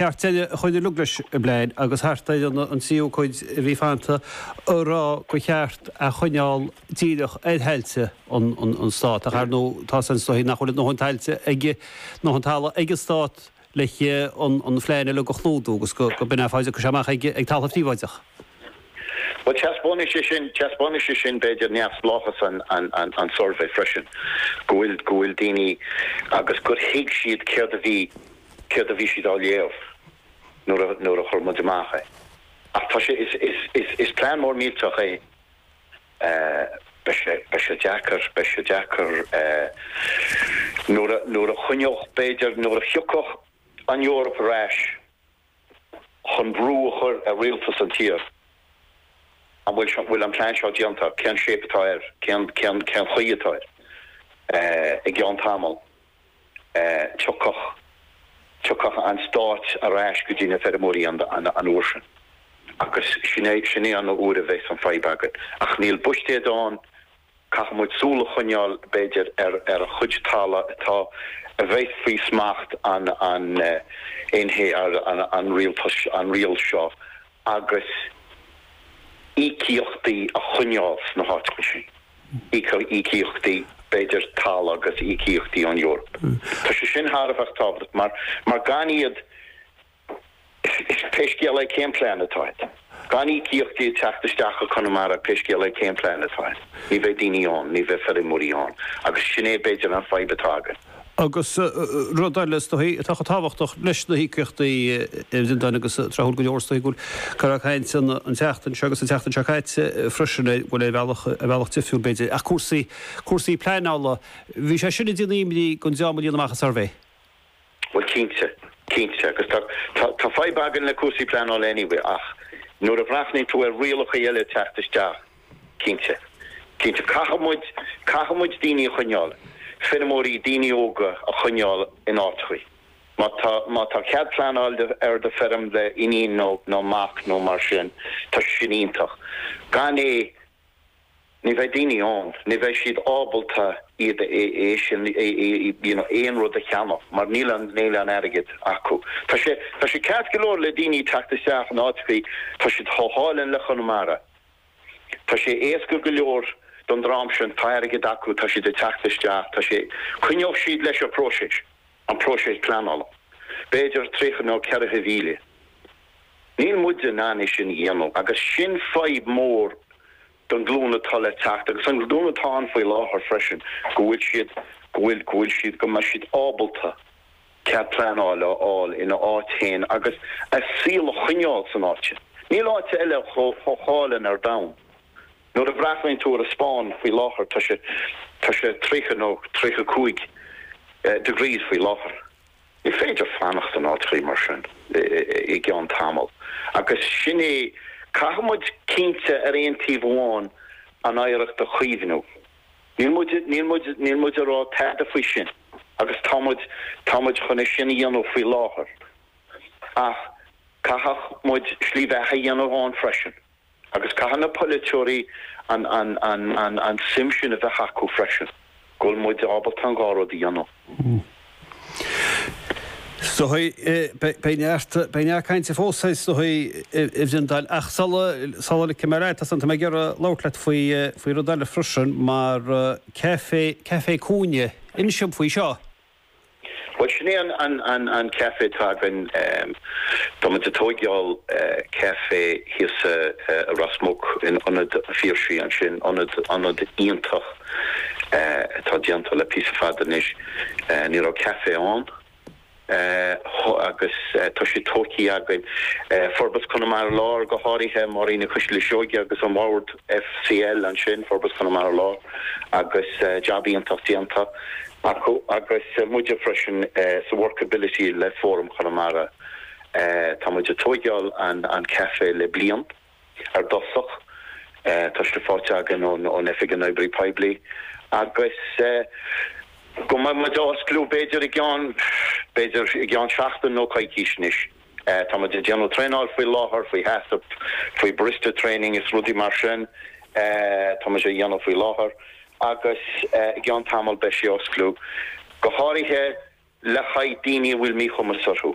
Ceart, dhá gcuirtí, logha is i bplean, agus thart ar an tríú cuid a bhí fanta, ag rá gur cheart é a choinneáil díreach ar thailte an stáit. Ach ar ndóigh, tá seans, is dóichí, nach bhfuil a ndóthain tailte ag, ndóthain talaimh ag an stát leis an bplean uilig a chlúdú, agus go mbeidh an fáilte ag crith amach ag talamh phríobháideach. Bhuel, teaspáinfidh sé sin, teaspáinfidh sé sin b'fhéidir neamhspleáchas an suirbhé freisin, go bhfuil, go bhfuil daoine, agus gur thuig siad céard a bhí. céard a bhí siad á léamh nuair, nuair a chuir muid amach é. Ach tá sé, is plean mór millteach é, beidh sé deacair, beidh sé deacair nuair a, nuair a choinneodh, b'fhéidir, nuair a thiocfadh an Eoraip ar ais chun brú a chur ar rialtas an tír, an bhfuil an plean seo déanta, cén shape atá air, cén chaoi atá air i gceann tamall. tiocfadh, tiocfadh an stát ar ais go dtí na feirmeoirí an uair sin agus sin é, sin é an uair a bheas an fadhb againn. Ach níl a fhios againn, caithfidh muid súil a choinneáil b'fhéidir ar, ar an chuid tala atá, a bheas faoi smacht an, an NHA, an, an rialtas, an riail seo. agus íocaíochtaí a choinneáil sna háiteacha sin, íocaíochtaí, b'fhéidir, tala agus íocaíochtaí ón Eoraip. Tá sé sin thar a bheith tábhachtach mar, mar gan iad, pé scéal é cén plean atá agat, gan íocaíochtaí ag teacht isteach go Conamara, pé scéal é cén plean atá agat, ní bheidh daoine ann, ní bheidh feirmeoirí ann, agus sin é, b'fhéidir, an fadhb atá againn. Agus rud eile, is dóichí, atá chomh tábhachtach leis na híocaíochtaí a Bhreandáin, agus tráthúil go leor, is dóichí go bhfuil go leor cainte an tseachtain seo agus an tseachtain seo caite freisin ar, bhuel, ar bhealach, ar bhealach difriúil, b'fhéidir, ach cúrsaí, cúrsaí pleanála. Bhí sé sin ag déanamh imní don dream a líon amach an suirbhé. Bhuel, cinnte, cinnte, agus tá, tá, tá fadhb againn le cúrsaí pleanála anyway, ach nuair a bhreathnaíonn tú go bhfuil rialacha eile teacht isteach, Cinnte. Cinnte. Caithfidh muid, caithfidh muid daoine a choinneáil, feirmeoirí, daoine óga a choinneáil in áiteachaí. Má tá, má tá cead pleanáil do, ar do feirm le iníon nó, nó mac nó mar sin, tá sin iontach. Gan é, ní bheidh daoine ann, ní bheidh siad ábalta iad a, é sin, é, é, you know, aon rud a cheannach mar níl an, níl an airgead acu. Tá sé, tá sé ceart go leor le daoine teacht isteach in áiteachaí, tá siad chomh hálainn le Conamara. Tá sé éasca go leor don dream sin, tá airgead acu, tá siad ag teacht isteach, tá sé. Coinneodh siad leis an próiseas, an próiseas pleanála, b'fhéidir trí nó ceithre mhíle. Níl muide in ann é sin a dhéanamh agus sin fadhb mór don ghlúin atá le teacht agus an ghlúin atá ann faoi láthair freisin, go bhfuil siad, go bhfuil, go bhfuil siad, go mbeidh siad ábalta. cead pleanáil a fháil ina áit féin agus a saol a choinneáil san áit sin. Níl áit eile chomh hálainn ar domhan. Nuair a bhreathnaíonn tú ar an Spáinn faoi láthair, tá sé, tá sé triocha nó triocha cúig degrees faoi láthair. Ní féidir fanacht in áit mar sin i gceann tamall. Agus sin é, caithfidh muid cinnte ar aon taobh amháin an oidhreacht a chaomhnú. Níl muid, níl muid, níl muid ag rá tada faoi sin agus tá muid, tá muid chun é sin a dhéanamh faoi láthair ach caithfidh muid slí bheatha a dhéanamh ann freisin agus caithfidh na polaiteoirí an, an, an, an, an suim sin a bheith acu freisin go bhfuil muid ábalta an dhá rud a dhéanamh. Beidh neart cainte fós is iondúil ach sula ligfidh mé leat anois, tá mé ag iarraidh labhairt leat faoi rud eile freisin, mar Café Cúinne. Inis dom faoi seo. Bhuel, sin é an café atá againn. Tá muid ag tóigeáil café thíos i Ros Muc in Ionad an Phiarsaigh ansin, ionad iontach. atá déanta le píosa fada anois, ní raibh café ann agus tá sé tóigthe againn. Forbairt Chonamara Láir go háirithe, Máirín Nic Coisile Seoige agus an Bord FCL ansin, Forbairt Chonamara Láir agus jab iontach déanta acu agus muide freisin sa Workability le Fóram Chonamara, tá muid ag tóigeáil an café le bliain. ar dtosach, tá sé faighte againn ón Oifig na nOibreacha Poiblí, agus go mbeidh muid á osclú b'fhéidir i gceann, b'fhéidir i gceann seachtain nó coicís anois. Tá muid ag déanamh traenáil faoi láthair, faoi HACCP, faoi barista training is rudaí mar sin, tá muid á dhéanamh faoi láthair, agus i gceann tamall beidh sé á osclú, go háirithe le haghaidh daoine a bhfuil míchumas orthu.